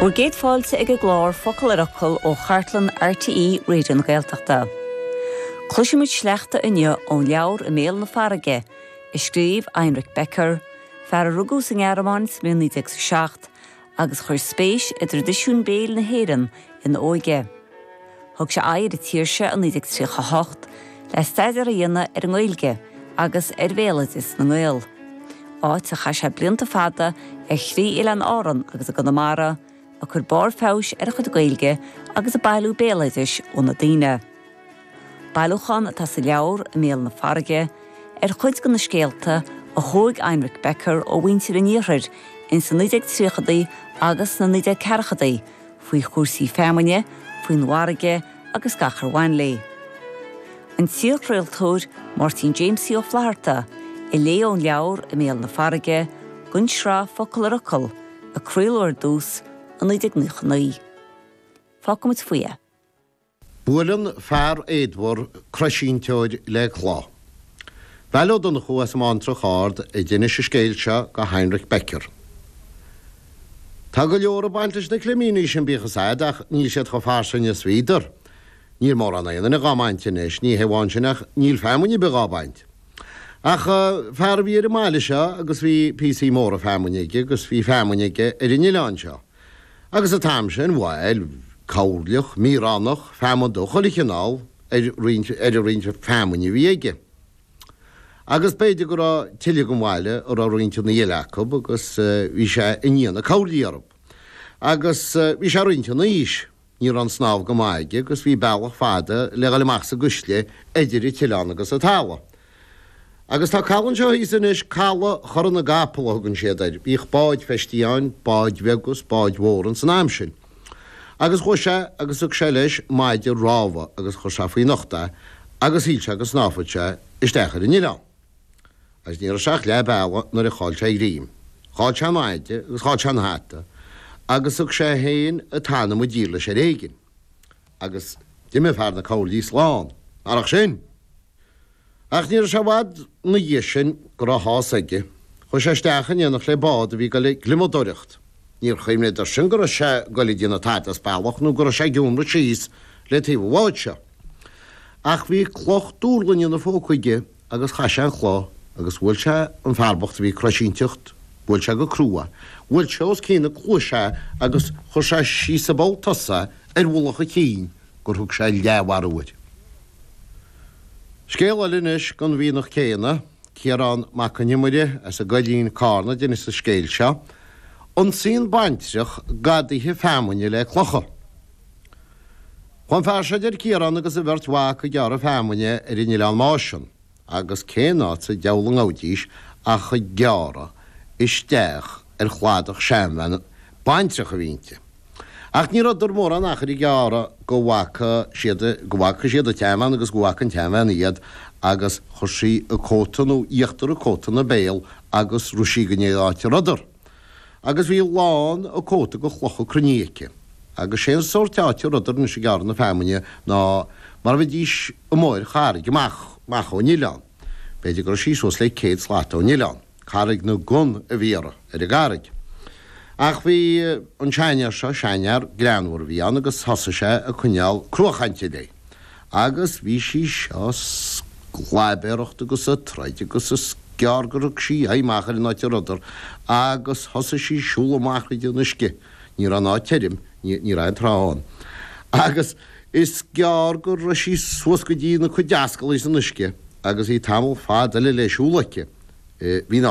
Bhur gcéad fáilte ag an gclár Focal ar Fhocal ó chartlann RTÉ Raidió na Gaeltachta. Cloisfimid sleachta inniu ón leabhar I mBéal na Farraige, a scríobh Heinrich Becker, fear a rugadh sa nGearmáin sa mbliain 1907 agus a chuir spéis i dtraidisiún béil na hÉireann ina óige. Thug sé aghaidh ar an tír seo i 1938 le staidéar a dhéanamh ar an nGaeilge agus ar bhéaloideas na nGael, áit ar chaith sé blianta fada ar thrí oileán Árann agus i gConamara, ag cur barr feabhais ar a chuid Gaeilge agus ag bailiú béaloidis ó na daoine. Bailiúchán atá sa leabhar, I mBéal na Farraige, ar chuid de na scéalta a thóig Heinrich Becker ó mhuintir an Iarthair ins na 1930idí agus sna 1940idí faoi chúrsaí feamainne, faoin bhfarraige agus gach ar bhain léi. An t-iarchraoltóir Máirtín Jaimsie Ó Flatharta a léigh ón leabhar I mBéal na Farraige don tsraith Focal ar Fhocal a craoladh ar dtús i 1999. Fágfaimid faoi é. Buaileann fear éadmhar croisínteoir le cloich. Veail Ó Donnchú as an mBántrach Ard a d'inis an scéal seo do Heinrich Becker. Tá go leor ag baint leis na climíní sin bíodh a fhios a'd ach níl siad chomh fairsing is bhíodar. Níl mórán aon duine dhá mbaint anois, ní hé amháin sin ach níl feamainn ar bith dhá baint. Ach fear a bhí ar an mbaile seo agus bhí píosaí móra feamainne aige agus bhí feamainn aige ar an oileán seo. agus an t-am sin bhuel coirleach, míoránach, feamainn dubh, chuile chineál ar ar a roinnt feamainne a bhí aige. Agus b'fhéidir go raibh tuilleadh den bhaile a raibh roinnt ina dhiaidh acu agus bhí sé i ndiaidh na coirlí orthu. Agus bhí sé roinnt ina aois. Ní raibh an snámh go maith aige agus bhí bealach fada le dhul amach sa gcuisle eidir an t-oileán agus an talamh. Agus tá caladh anseo thíos anois, Caladh Chora na gCapall a thugann siad air. Bhíodh báid feistithe ann, báid bheaga is báid mhóra ins an am sin. Agus chuaigh sé agus thug sé leis maide rámha agus chuir sé faoina ucht é agus shíl sé go snámhfadh sé isteach ar an oileán. Agus ní raibh sé ach leath bealaigh nuair a chaill sé a ghreim. Chaill sé an maide agus chaill sé an hata, agus thug sé féin an t-anam i dtír leis ar éigin. Agus d'imigh fear na coirlí slán, marach sin! Ach ní raibh sé i bhfad 'na dhiaidh sin go raibh a shásamh aige. Chuaigh sé isteach in éineacht le bád a bhí ag dul ag gliomadóireacht. Níor chuimhneadar sin go raibh sé ag dul ag déanamh tada as bealach nó go raibh sé ag iomradh síos le taobh an bháid seo. Ach bhí cloch duirlinge 'na phóca aige. agus chaith sé an chloch agus bhuail sé an fear bocht a bhí ag croisínteacht, bhuail sé go crua, bhuail sé os cionn na cluaise é agus chuir sé síos i bpoll tosaigh é ar mhullach a chinn gur thug sé leathmharú air. Scéal eile anois don mhianach céanna, Ciarán Mac Con Iomaire as an gCoillín, Carna, a d'inis an scéal seo, Ionsaíonn baintreach gadaithe feamainne le clocha. Chuaigh an fear seo, a deir Ciarán agus a bheirt mhac ag gearradh feamainne ar an Oileán Máisean, agus cén áit sa diabhal a ngabhaidís ach ag gearradh isteach ar chladach seanbhean baintreach a bhí inti. Ach ní rabhadar mórán achair ag gearradh go bhfaca siad, go bhfaca siad an tseanbhean agus go bhfaca an tseanbhean iad agus chuir sí a cóta nó íochtar a cóta ina béal agus rith sí go dtí an áit a rabhadar. agus bhí lán a cóta de chlocha cruinnithe aici, agus sé an sórt áite a rabhadar anois ag gearradh na feamainne ná mar a bheidís amuigh ar charraig amach amach ón oileán, b'fhéidir go raibh sí suas le céad slata ón oileán, Carraig na gCon a bhí uirthi, ar an gcarraig. Ach bhí an seanfhear seo, seanfhear greannmhar a bhí ann, agus thosaigh sé ag coinneáil cruachainte léi, Agus bhí sí seo ag sclaibéireacht agus ag troid agus is gearr gur thug sí aghaidh amach ar an áit a rabhadar agus thosaigh sí ag siúl amach thríd an uisce, ní raibh an áit tirim, ní raibh aon trá ann, agus is gearr go raibh sí suas go dtí na cuid ascaillí san uisce agus bhí tamall fada eile le siúl aici. Bhí ná.